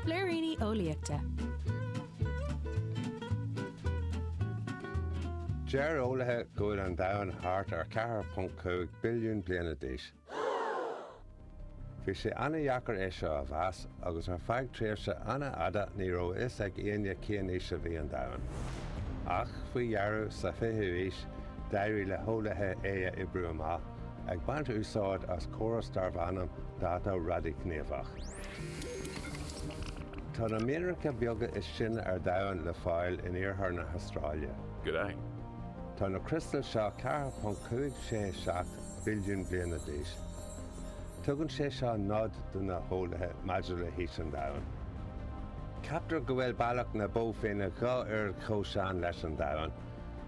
Blúiríní Eolaíochta. Deir eolaithe go bhfuil an domhan thart ar 4.5 billiún bliana d'aois. Bhí sé an-deacair é seo a mheas, agus ar feadh tréimhse an-fhada ní raibh a fhios ag éinne cén aois a bhí an domhan. Ach faoi dheireadh, sa 20ú haois, d'éirigh le heolaithe é a oibriú amach. Ag baint úsáid as córas darbh ainm dáta raidighníomhach, tá na mianracha beaga is sine ar Domhan le fáil in iarthar na hAstráile. G'day. Tá na criostail seo 4.567 billiún bliana d'aois. Tugann sé seo nod do na heolaithe maidir le haois an Domhain. Ceaptar go bhfuil Bealach na Bó Finne dhá oiread chomh sean leis an Domhan.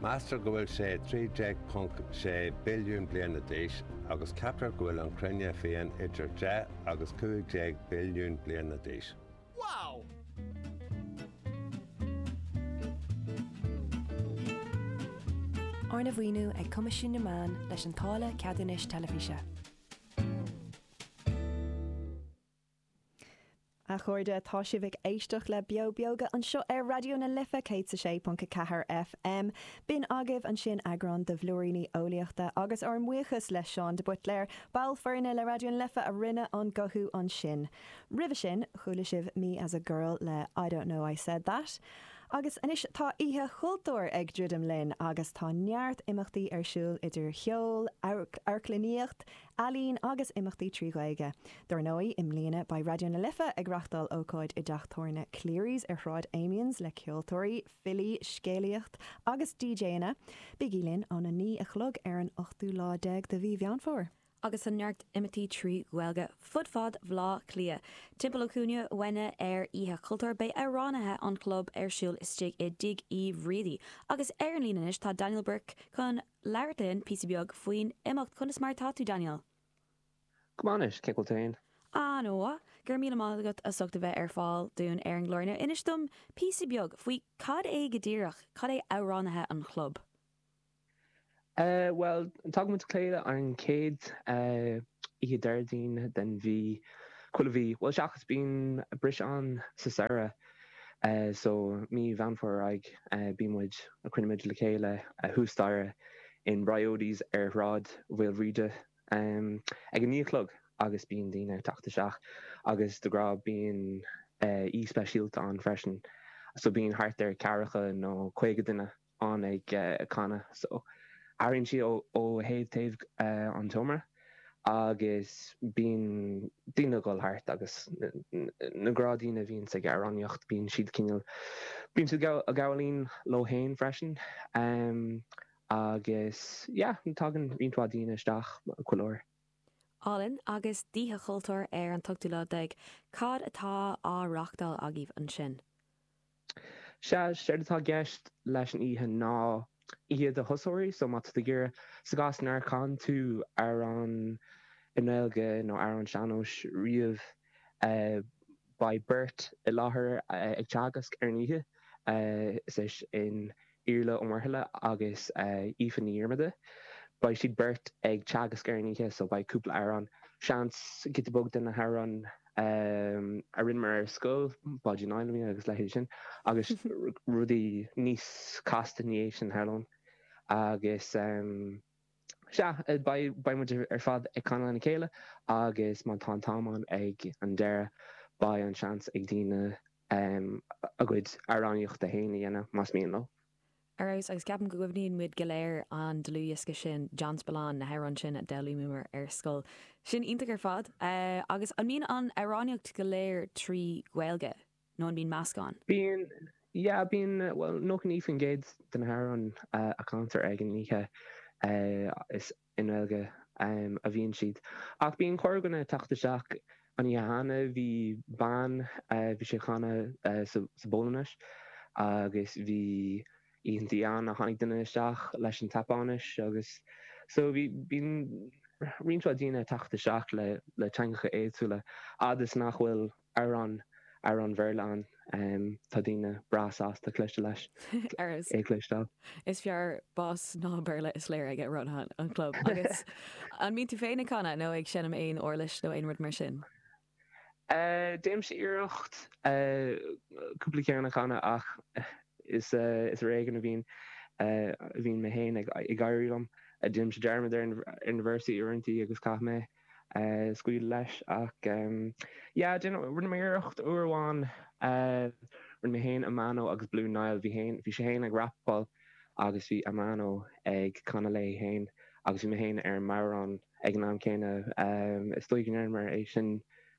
Meastar go bhfuil sé 13.6 billiún bliana d'aois, agus ceaptar go bhfuil an Chruinne féin idir deich agus cúig déag billiún bliana d'aois. Wow! Arna mhaoiniú ag Coimisiún na Meán leis an táille Ceadúnais Teilifíse. A chairde, tá sibh ag éisteacht le Beo Beag anseo ar Raidió na Life 106.4 FM. B'in agaibh ansin eagrán de Bhlúiríní Eolaíochta agus ár mbuíochas le Seán de Buitléar, ball foirne le Raidió na Life a rinne an guthú ansin. Roimhe sin, chuala sibh Me as a Girl le I Don't Know I Said That. Agus anois tá Oíche Chultúir ag druidim linn agus tá neart imeachtaí ar siúl idir cheol, amharclannaíocht, Ealaín agus imeachtaí trí Ghaeilge. Dár ndóigh, i mbliana beidh Raidió na Life ag reachtáil ócáid i dteach tabhairne Cleary's ar Shráid Amiens le ceoltóirí, filí, scéalaíocht agus DJanna. Bígí linn ón 9 a chlog ar an ochtú lá déag de mhí Mheán Fómhair. agus tá neart imeachtaí trí Ghaeilge fud fad Bhleá Cliath. Timpeall an chúinne uainne ar Oíche Chultúir beidh amhránaithe an Chlub ar siúl istigh i dTigh Uí Bhriaidí agus ar an líne anois tá Daniel Burke chun labhairt linn píosa beag faoin imeacht. Conas mar atá tú, Daniel? Go maith anois, cén chaoi bhfuil tú féin? An-mhaith. Go raibh míle maith agat as ucht a bheith ar fáil dúinn ar an gclár inniu. Inis dom píosa beag faoi cad é go díreach, cad é amhránaithe an chlub? Bhuel, tagaimid le chéile ar an chéad oíche Déardaoin den mhí, chuile mhí, bhuel seachas bíonn briseadh ann sa samhradh. So mí Mheán Fómhair ar aghaidh, bíonn muid, cruinnímid le chéile thuas staighre in Briodys ar Shráid Mhaoilbhríde ag a naoi a chlog agus bíonn daoine ag teacht isteach agus de ghnáth bíonn aoi speisialta ann freisin. So bíonn thart ar ceathracha nó caoga duine ann. ann ag canadh so airíonn siad ó thaobh taobh den seomra agus bíonn daoine ag dul thart agus na gnáthdhaoine a bhíonn ag amhránaíocht bíonn siad cineál bíonn siad ag gabháil fhoinn leo féin freisin agus yeah tagann roinnt mhaith daoine isteach chuile uair. Álainn agus d'Oíche Chultúir ar an ochtú lá déag, cad atá á reachtáil agaibh ansin? Sea, séard atá i gceist leis an oíche ná oíche do thosóirí, so má tá tú ag iarraidh, sa gcás nár chan tú amhrán i nGaeilge nó amhrán sean-nóis riamh, beidh beirt i láthair ag teagasc ar an oíche, is é sin, Iarla Ó Muirthile agus Aoife Ní Dhiarmada. Beidh siad beirt ag teagasc ar an oíche so beidh cúpla amhrán, seans, giota beag de na hamhráin a rinneamar ar scoil, Báidín Fheilimí agus leithéidí sin, agus rudaí níos casta ina dhiaidh sin, tharlóinn. Agus sea, beidh muid ar fad ag canadh lena chéile agus má tá an t-am ann ag an deireadh beidh an tseans ag daoine a gcuid amhránaíocht féin a dhéanamh, más mian leo. Ar fheabhas, agus ceapaim go gcuimhníonn muid go léir an dlúthdhiosca sin, John Spillane, na hamhráin sin a d'fhoghlaimíomar ar scoil. Sin iontach ar fad. Agus an mbíonn an amhránaíocht go léir trí Ghaeilge? Nó an mbíonn meascán? Bíonn, yeah, bíonn, bhuel, 99% de na hamhráin a chantar ag an oíche is. I nGaeilge a bhíonn siad. Ach bíonn corrdhuine ag teacht isteach. An oíche cheana bhí bean, bhí sí ag canadh sa bPolainnis agus bhí oícheanta ann a tháinig duine isteach leis an tSeapáinis agus so bíonn roinnt mhaith daoine ag teacht isteach le teangacha éagsúla a fhad is nach bhfuil amhrán, amhrán Béarla ann, tá daoine breá sásta éisteacht leis, é a chloisteáil. Is fearr bás ná Béarla is léir aige Ronan, an chlub. Agus an mbíonn tú féin ag canadh nó ag seinm aon uirlis nó aon rud mar sin? Déanaimse iarracht cúpla ceann a chanadh ach is ar éigean a bhíonn sé ag éirí liom. Déanaimse dearmad ar na véarsaí uaireantaí agus caithfidh mé scaoileadh leis ach yeah déan rinne mé iarracht uair amháin rinne mé féin Amano agus Blue Niall bhí féin bhí sé féin ag rapáil agus bhí Amano ag canadh léi féin agus bhí mé féin ar an mbodhrán ag an am céanna is dóigh go ndearnamar é sin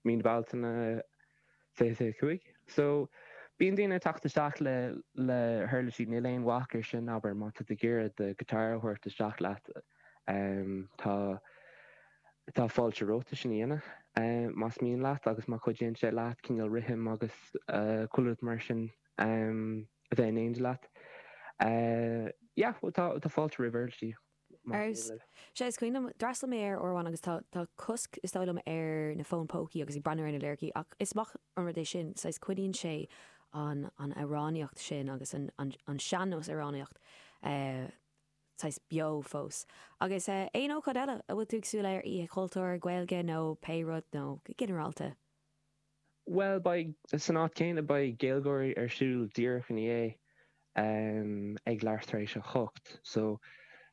mí na Bealtaine 25. So, bíonn daoine ag teacht isteach le, le huirlisí, níl aon bhac ar sin, abair, má tá tú ag iarraidh do guitar a thabhairt isteach leat, tá, tá fáilte romhat sin a dhéanamh, más mian leat agus má chuidíonn sé leat cineál rithim agus chuile rud mar sin a bheith in éindí leat, yeah, tá, tá fáilte roimh uirlisí. Ar, sea, is cuimhin liom, d'fhreastal mé air uair amháin agus tá cosc, is dóigh liom, ar na fóin pócaí agus ag breathnú ar na liricí ach is maith an rud é sin, saghas coinníonn sé an, an amhránaíocht sin agus an sean-nós amhránaíocht saghas beo fós. Agus aon ócáid eile a bhfuil tú ag súil leo ar Oíche Chultúir, Gaeilge nó pé rud, nó go ginearálta? Bhuel, beidh, san áit chéanna, beidh Gaeilgeoirí ar siúl díreach ina dhiaidh ag leathuair tar éis a hocht. So,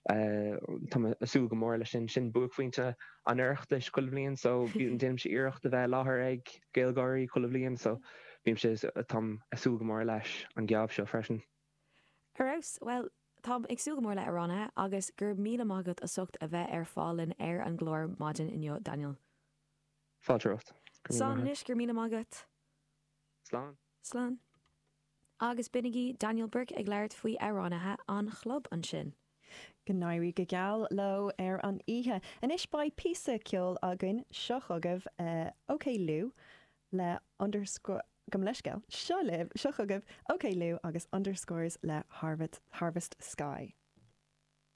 tá mé ag súil go mór leis sin. Sin buaicphointe an Oireachtais chuile bhliain. So, déanaimse iarracht a bheith i láthair ag Gaeilgeoirí chuile bhliain. So, bímse, táim ag súil go mór leis an geábh seo freisin. Ar fheabhas! Bhuel, táim ag súil go mór le amhránaithe agus go raibh míle maith agat as ucht a bheith ar fáil dúinn ar an gclár maidin inniu, Daniel. Fáilte romhat. Go raibh maith agat. Slán anois. Go raibh míle maith agat. Slán. Slán. Agus b'in é Daniel Burke ag labhairt faoi amhránaithe an chlub ansin. Go n-éirí go geal leo ar an oíche. Anois beidh píosa ceoil againn. Seo chugaibh OK Liú le Underscore, gabh mo leithscéal, seo libh, seo chugaibh OK Liú agus Underscores le Harvest Sky.